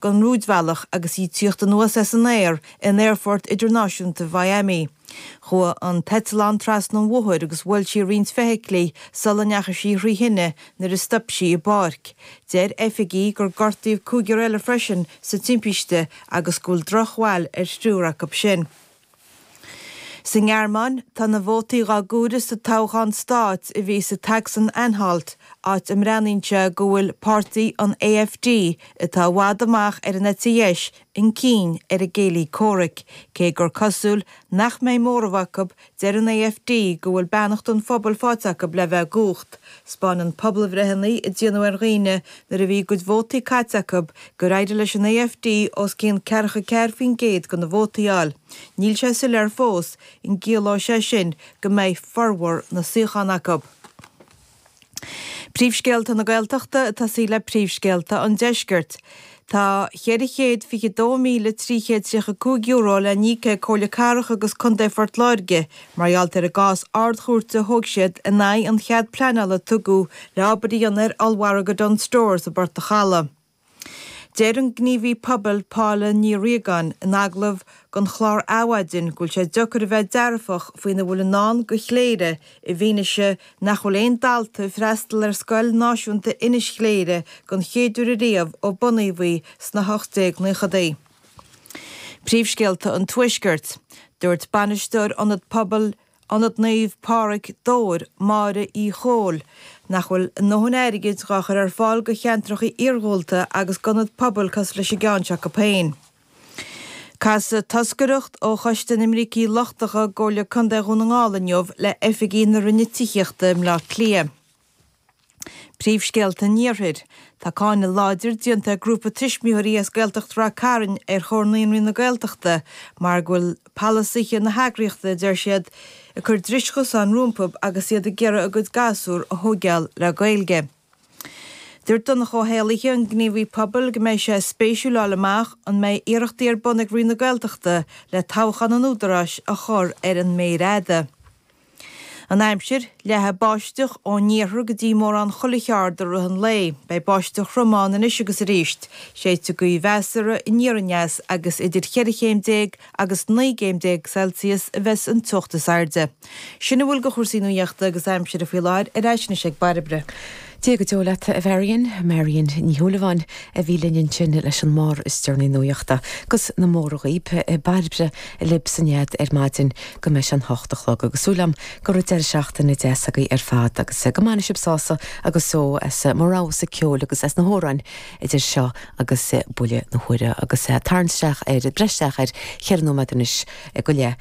den rúidbhealach agus í tíocht anuas as an aer in Aerfort Idirnáisiúnta Mhiami. Chuaigh an t-eitleán trasna an bhóthair agus bhuail sí roinnt feithiclí sula ndeachaigh sí thrí thine nuair a stop sí i bpáirc. Deir oifigigh gur gortaíodh cúigear eile freisin sa timpiste agus go bhfuil drochbhail ar thriúr acu sin. Sa nGearmáin, tá na vótaí dhá gcomhaireamh sa toghchán stáit a bhí sa tSacsain-Anhalt, áit a mbreathnaíonn sé go bhfuil páirtí an AfD, atá i bhfad amach ar an eite dheis, chun cinn ar a gcéilí comhraic, cé gur cosúil nach mbeidh móramh acu, deir an AfD go bhfuil beannacht an phobail faighte acu le bheith i gcumhacht. 'Spáineann pobalbhreitheanna a déanadh ar dhaoine nuair a bhí a gcuid vótaí caite acu gur éirigh leis an AfD os cionn ceathracha ceathair faoin gcéad de na vótaí a fháil. Níl sé soiléir fós an gciallóidh sé sin go mbeidh formhór na suíochán acu. Príomhscéalta na Gaeltachta ag tosaí le príomhscéalta an Deiscirt. Tá €422,335 le n-íoc ag Comhairle Cathrach agus Contae Phort Láirge mar gheall ar an gcás Ard-Chúirte a thóg siad in aghaidh an chead pleanála a tugadh le obair a dhéanamh ar ollmhargadh Dunnes Stores i bPort an Chalaidh. Deir an gníomhaí pobail Paula Ní Ríogáin in agallamh don chlár Adhmhaidin go bhfuil sé deocair a bheith dearfach faoina bhfuil i ndán go Chléire, I bhfianaise nach bhfuil aon dalta ag freastal ar scoil náisiúnta Inis Chléire den chéad uair ariamh ó bunaíodh í sna hocht déag naochadaí. Príomhscéalta an Tuaiscirt. Dúirt Bainisteoir Ionad Pobail Ionad Naomh Pádraig, Dobhair, Máire Uí Chomhaill, nach bhfuil a ndóthain airgid dhá chur ar fáil go cheantracha iarghúlta agus d'ionaid pobail cosúil leis an gceann seo acu féin. Casfaidh toscaireacht ó Choiste na mBrící Lochtacha i gComhairle Contae Dhún na nGall inniu le oifigigh na Roinne Tithíochta i mBleá Cliath. Príomhscéalta an Iarthair. Tá cáineadh láidir déanta ag grúpa tuismitheoirí as Gaeltacht Ráth Cairn ar Chomhar Naíonraí na Gaeltachta mar go bhfuil palasaithe na heagraíochta, a deir siad, ag cur dris chosáin rompu agus iad ag iarraidh a gcuid gasúr a thóigeáil le Gaeilge. Dúirt Donncha Ó hÉallaithe, an gníomhaí pobail, go mbeidh sé spéisiúil fháil amach an mbeidh iarrachtaí ar bun ag Roinn na Gaeltachta le toghchán an Údaráis a chur ar an méir fhada. An aimsir, Leathfaidh báisteach ón iarthar go dtí mórán chuile cheard i rith an lae. Beidh báisteach throm ann anois agus arís. Séidfidh gaoth mheasartha aniar aneas agus idir cheithre chéim déag agus naoi gcéim déag Celsius a bheidhs an teocht is airde. Sin a bhfuil de chúrsaí nuaíochta agus aimsire faoi láthair, ar ais anois ag Bairbre. Dia go deo leat, a Mharion. Marion Ní Shúilleabháin a bhí linn ansin leis an mbarr is deireanaí nuaíochta agus na mórtha dhaoib, Bairbre libh sa nead ar maidin go mbeidh sé an hocht a chlog agus súil agam go raibh deireadh seachtaine deas agaibh ar fad agus go mbainfidh sibh sásamh agus só as mo roghasa ceol agus as na hamhráin idir seo agus buille na huaire agus tarraingt isteach ar, breith isteach ar cheithre nóiméad anois go leith.